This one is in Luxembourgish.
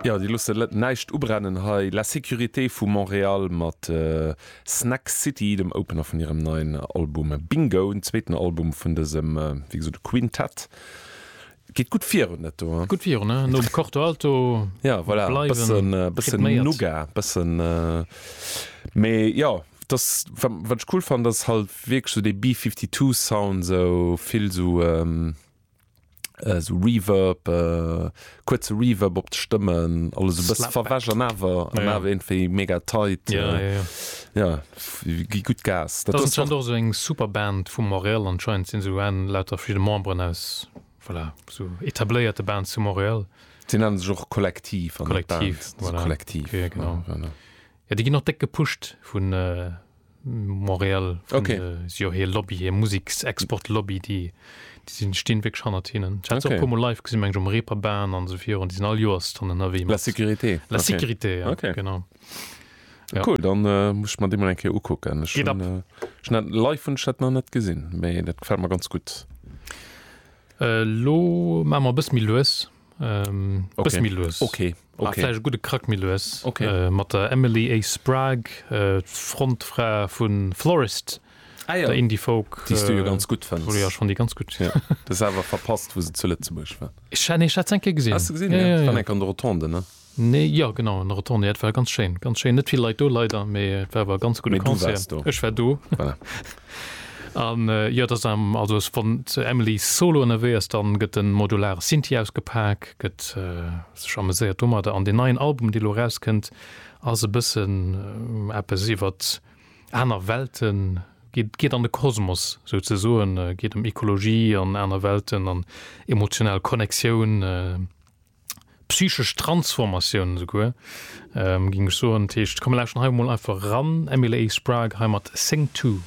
Jo, déi loosse näischt ubrennen hei, La Sécurité vu Montréal mat Snack City, dem Opener vun hirem neien Album Bingo, den zweeten Album vun dësem, wéi gesot, Quintett. Geet gutt virun, dat do. Gutt virun, he? Nom Corto Alto bleiwen rhythméiert. Bëssen, mee jo, dass, wat ech cool fannen, dass halt wierklech esou dee B-52-Sound, esou vill esou. esou Reverb, äh, kuerze Reverb op d'Stëmmen, alles e bësse verwäsch an awer an awer iergendwéi mega tight. Ja, ja, ja. Ja, gi gutt Gas. Dat ass schonn och esou eng super Band vu Montréal, anscheinend sinn se un lauter verschidde Memberen aus, voilà, esou etabléierte Bands zu Montréal. Déi nennen sech och Kollektiv an net Band, Kollektiv, voilà, Kollektiv, okay, genau. Ja, déi ginn och déck gepusht vun, Montréal vun okay. de, si jo hir Lobby, hir Museksexport-Lobby, déi déi sinn, stinn wierklech hannert hinnen. Ech hat se och e Okay. puermol live gesinn, meng ech um Reeperbahn an esou virun. Déi sinn all Joers dann ënnerwee La mat Sécurité. La Okay. Sécurité, ja, Okay. genau. Ja. Cool, dann äh, muss ech mer déi mal eng Kéier ukucken. Ech Geht hunn, ab. äh, ech hunn dat live hunn ech dat nach net gesinn, mee dat gefält mer ganz gutt. Äh, Lo maache mer e bësse méi lues, Ähm, okay. Bësse méi lues. Okay. Ah, okay. Vläch e gudde Krack méi lues. Okay. Äh, mat der Emily A. Sprague, äh, d'Frontfra vun Florist. Ah, ja. Der Indie-Folk. Déi du jo äh, ganz gut fënns. Ja, schon déi ganz gut. Ja. Das awer verpasst, wo se zu Lëtzebuerg war. Ech hat eng Kéier gesinn. Hast du gesinn? Ja, ja, ja. Dann eng an der Rotonde, ne? Nee, jo genau, en Retourné, jo et war ganz schéin, ganz schéin, net vill Leit do leider, mee et war awer e ganz gudde Concert, ech war do. An jo et ass am, also ass wann d'Emily solo ënnerwee ass, dann gëtt en modulare Synthi ausgepak, gëtt sech ameséiert domadder, an deen neien Album dee lo eraus kënnt ass e bëssen eppes iwwert aner Welten, geet geet an de Kosmos sou ze soen, geet ëm Ekologie an aner Welten an emotional Connectioun. psychesch Transformatioun esouguer, géing ech soen. Dat heescht, komm mir lauschteren hei emol einfach eran, Emily Sprague hei mat Sing Two.